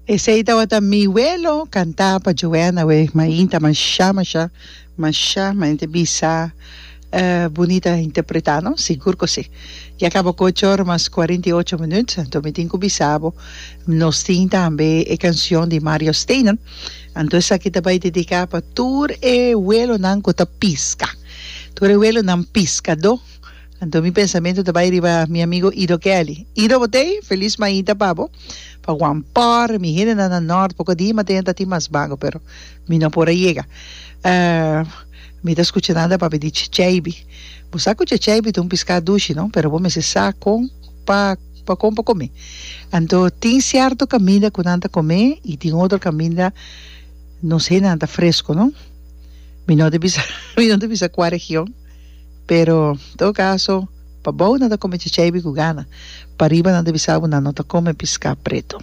Esey tabata mi we lo canta pa Joanna we mainta masha masha masha maente bisa bunita interpreta no sigur cu si ya caba cu ocho ora mas cuarenta y ocho minuut anto mi tin cu bisabo nos tin tambe e cancion di Mario Steynen anto esaki ta bay dedica pa tur e welonan cu ta pisca tur e welonan piscado Anto mi pensamentu ta bai riba mi amigo Ido Kelly. Ido, bo t'ei? Felis maita pa bo. Pa wan por mi hendenan na nort poko di mate nan ta tin mas bago, pero mi no por a yega. Mi ta skucha nan ta papia di checheibi. Bo sa ku checheibi ta un piská dushi, no? Pero bo mester sa kon pa pa kon pa kom'é. Anto tin sierto kaminda ku nan ta kom'é i tin otro kaminda nos hendenan ta fresko, no? Mi no ta bisa mi no ta bisa kua region. Pero, todo caso, pa bou nan ta come chachai bico gana, pariba nan ta bisa bo nan no ta come pisca preto.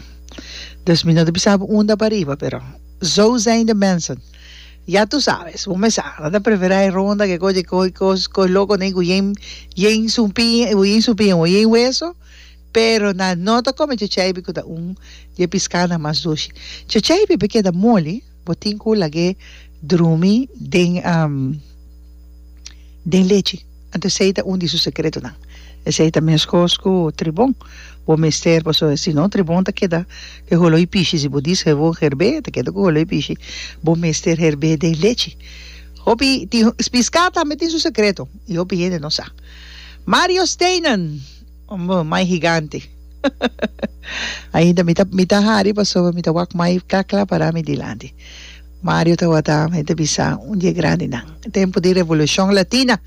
Dus mi no ta bisa bo unda pariba, pero zo zijn de mensen. Ya tu sabes, bo me sa, nan ta prefera e ronda ke coge coge cos coge loco nei guyen yen su pie, guyen su pie, guyen hueso, pero nan no ta come chachai bico ta un di e piscanan mas dushi. Chachai bico keda moli. Bo tin cu lag'e drumi den den lechi. Anto esey ta un di su secretonan. Esey ta mescos cu tribon. Bo mester, paso si no tribon ta keda cu e holoi pishi. Si bo diz cu bo herbe, ta keda cu holoi pishi. Bo mester herbe den lechi. Hopi tin, pisca tambe tin su secreto y hopi hende no sa. Mario Steynen. Ombo, mai higante. Ainda mi ta mi ta hari pasobra mi ta wak mai kla kla para mi dilanti. Mario ta wata e ta bisa un di e grandinan. Tempu di Revolucion Latina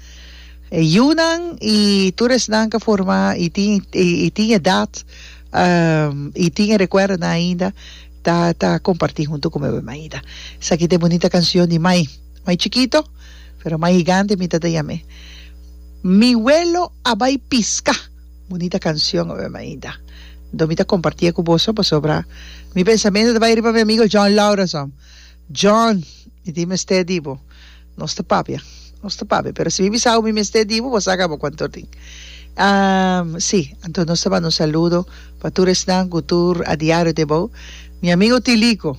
e yunan y tur esnan ka forma y tin y tin edad y tin e recuerdonan ainda ta ta comparti hunto cu mi. Esaki ta e bunita cancion di mai. Mai chikito, pero mai higante mi tata yam'e. Mi welo a bai piska! Bunita kanshon obe mainta. Anto mi ta komparti'e ku boso pasobra mi pensamentu ta bai riba mi amigo John Laurason. John, mi tin mester di bo. Nos ta papia, nos ta papia, pero si mi bisa hu mi mester di bo, bo sa kaba ku anto tin. Am, si, anto nos ta banda un saludo pa tur esnan ku tur a diario di abou. Mi amigo Tilico.